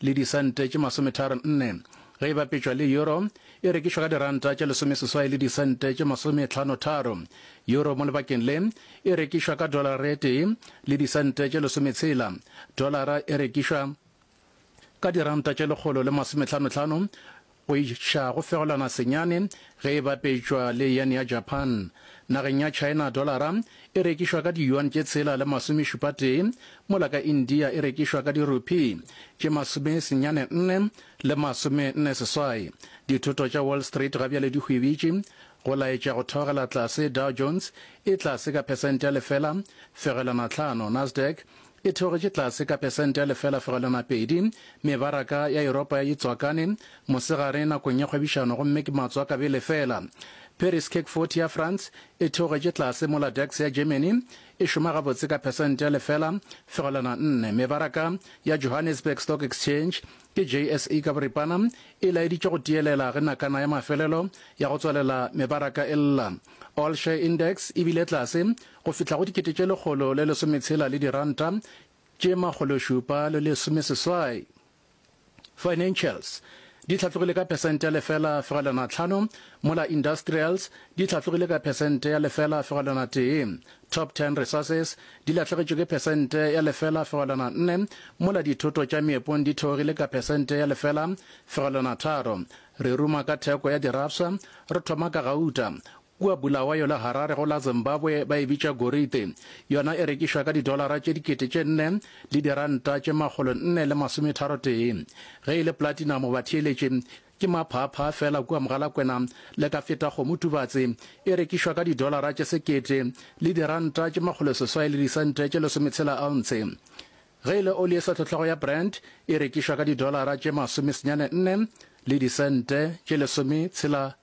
le disente tše masometharo nne, ge e bapetšwa le euro e rekišwa ka diranta tše lesomeseswai le disente tše masometlhanotharo. Euro mo lebakeng le e rekišwa ka dolaratee le disente tše lesometshela. Dolara e rekišwa ka diranta tše lekgolo le masometlhanotlhano go iša go fegolana senyane ge e bapetšwa le yen ya Japan. Nageng ya China dolara e rekišwa ka diyuan tše tshela le masomešupatee, mola ka India e rekišwa ka dirupi tše masomesenyane nne le masomenne seswai. Dithoto tša Wall Street ga bjale di hwibitše go laetša go theogela tlase, Dow Jones e tlase ka phesente ya lefela fegelwana tlhano, Nasdaq E theogetše tlase ka pesente ya lefela fegelwana a pedi. Mebaraka ya Yuropa ya itswakane mosegare nakong ya kgwebišano gomme ke matswaka bele fela. Paris CAC 40 ya France e theogetše tlase mola DAX ya Germany e šoma gabotse ka pesente ya lefela fegelwana nne. Mebaraka ya Johannesburg Stock Exchange, ke JSE ka boripana, e laeditše go tiyelela ge nakana ya mafelelo ya go tswalela mebaraka e lla. All Share Index e bile tlase go fihla go dikete tše lekgolo le lesometshela le diranta tše makgološupa le lesomeseswai. Financials di hlatlogile ka phesente ya lefela fegelwana tlhano, mola Industrials di hlatlogile ka phesente ya lefela fegelwana tee. Top Ten Resources di lahlegetšwe ke phesente ya lefela fegelwana nne, mola Dithoto tša Meepong di theogile ka phesente ya lefela fegelwana tharo. Re ruma ka theko ya dirafsa, re thoma ka gauta, Kua Bulawayo le Harare go la Zimbabwe ba e bitša gorite. Yona e rekišwa ka didolara tše dikete tše nne le diranta tše makgolo nne le masometharotee. Ge e le platinamo batheeletše ke maphaaphaa feela kua Mogalakwena le ka feta kgomo Tubatse e rekišwa ka didolara tše sekete le diranta tše makgolo seswai le disente tše lesometshela ounce. Ge e le oli e sehlohlego ya Brent e rekišwa ka didolara tše masomesenyane nne le disente tše lesometshela